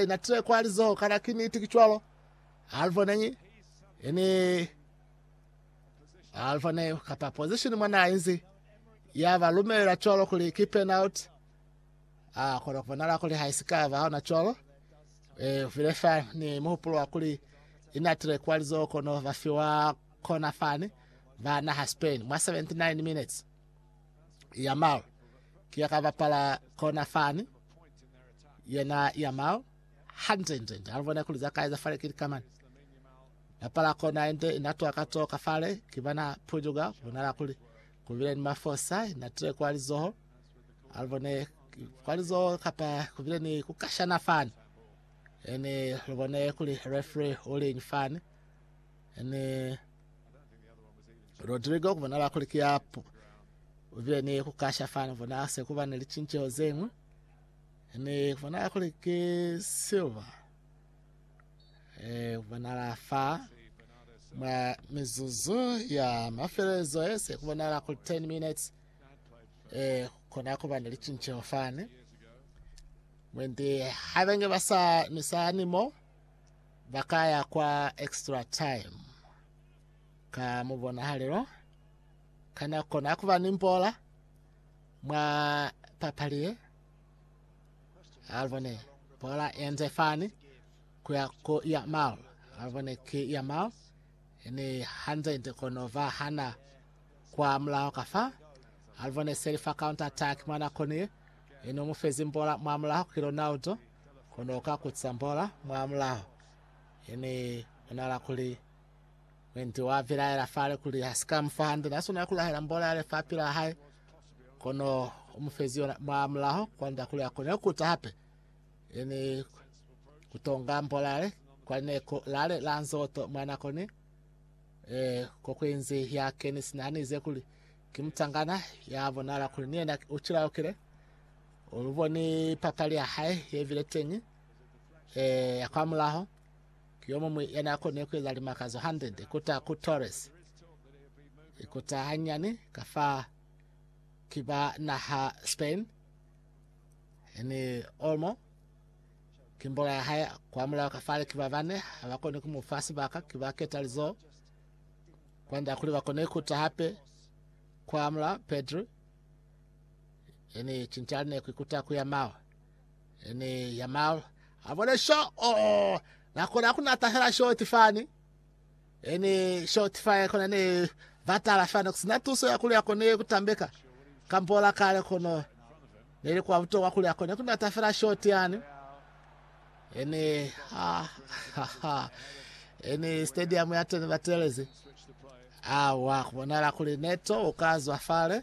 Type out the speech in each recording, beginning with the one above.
Ina tile kwa lizoho kana ki niti ki cwalo. Alva neñi ini Alva ne kata position mwa na inzi ya ba lumela cwalo kuli ki penalty. Ah kona kubonala kuli ha isika ba hona cwalo. Eh vile fa ni muhupulo wa kuli ina tile kwa lizoho kono ba fiwa kona fani ba na ha Spain mwa 79 minutes. Yamal ki ya ka bapala kona fani Yena Yamal hande nde nde alibona kuli za kaeza fale kili kamani napala kona ende inatoa katoka fale kibana pujuga bonala kuli kubile ni mafosa inatile kwa lizoho alibone kwa lizoho kapa kubile ni kukashana fani ene libone kuli referee ulinyi fani ene Rodrigo kubonala kuli kiapu ubile ni kukasha fani bona se kuba ni lichincheho zengwe Ne fana kuli ke silver eh bonala fa mwa mizuzu ya mafelelezo e se ku bonala ku 10 minutes eh kona ku ba ne licinceho fane mwende habenge ba sa misani mo ba ka ya kwa extra time ka mubonahalelo kana kona ku ba ni mbola Mwa papali ye, Alvone bola yenze fani kuya ku Yamal. Alvone ki Yamal ni hanze nte kono va hana kwa mulaho ka fa. Alvone seli fa counter attack mwa nako ni ye, ino mu fezi bola mwa mulaho ki Ronaldo kono ka kutisa bola mwa mulaho, ini bonala kuli Wendy wa bilaela fale kuli ha si ka mu fa hande, na swanela ku lahela mbolo ya lifapi la hae, kono u mu fezi yona mwa mulaho kwand'a kuli a kone ku ta hape, yani ku tonga mbolo yale kwa lineko lale la nzoto mwa nako ni eh, kokuinzi ya keni sina hanize kuli ki mutangana ya bonala kuli ni yena u cilaukile uluboni papali ya hae yebile teñi eh, ya kwa mulaho Ki yomuñwi yanaakoni kueza limakazo hande, Ikuta ku Torres. Ikuta hanyani ka fa ki ba naha Spain, ni Olmo ki mbola ya hae kwa mulao ka fale ki ba bane, habakoni kumufa sibaka, ki ba keta lizoho kwanda kuli bakone ikuta hape kwa mulao Pedri, yani cinca lineku ikuta kuya mawa. Ene ya mal avole sho o nakona kuna tahela short fani ene short fire kona ne batala fani kusina tuso ya kulia kone kutambeka kambola kale kono nele kwa butokwa kulia kone kuna tafela short yani ene ha, ha, ha. ene stadium ya tene batelezi awa kubonala kuli neto ukazwa fale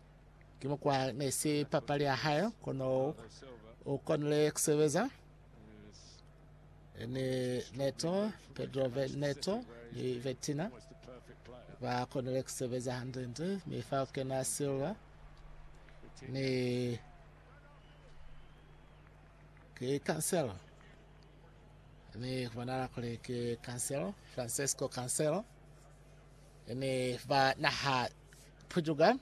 Ki mo kwa ne si papali ya hae, kono u konile ku sebeza ni Neto, Pedro Neto ni Vetina. Ba konile ku sebeza hande-nde, mi fa ku kena Silva ni ki Cancelo. Ni ku bonala kuli ki Cancelo, Francesco Cancelo. Ni ba naha putuka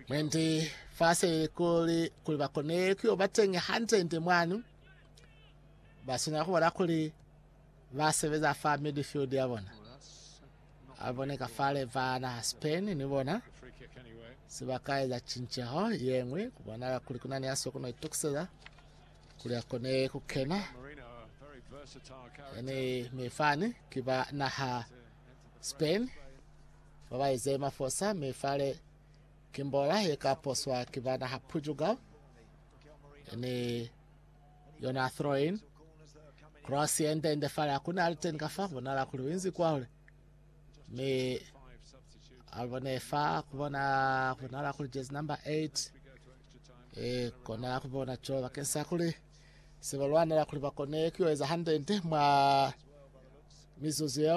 mwendi fase kuli kuli bakone kuyo batengi hante nte mwanu basina kubona kuli basebeza fa midfield ya bona abone ka fale vana Spain ni bona sibakaeza chincheho yengwe kubona kuli kuna ni aso kuna itukiseza kuli akone kukena yani mifani kiba naha Spain, Babaezi ye mafosa mi fale ki mbola ye ka poswa ki ba naha Portugal ni yona throw-in. Cross ye nde nde fale akuna aliteni ka fa bonala kuli winzi kwa hule. Mi alibone fa kubona bonala kuli jezi number 8 e kona kubona cho bakeng sa kuli se balwanela kuli bakone kuyoeza hande nde mwa mizuzu yeo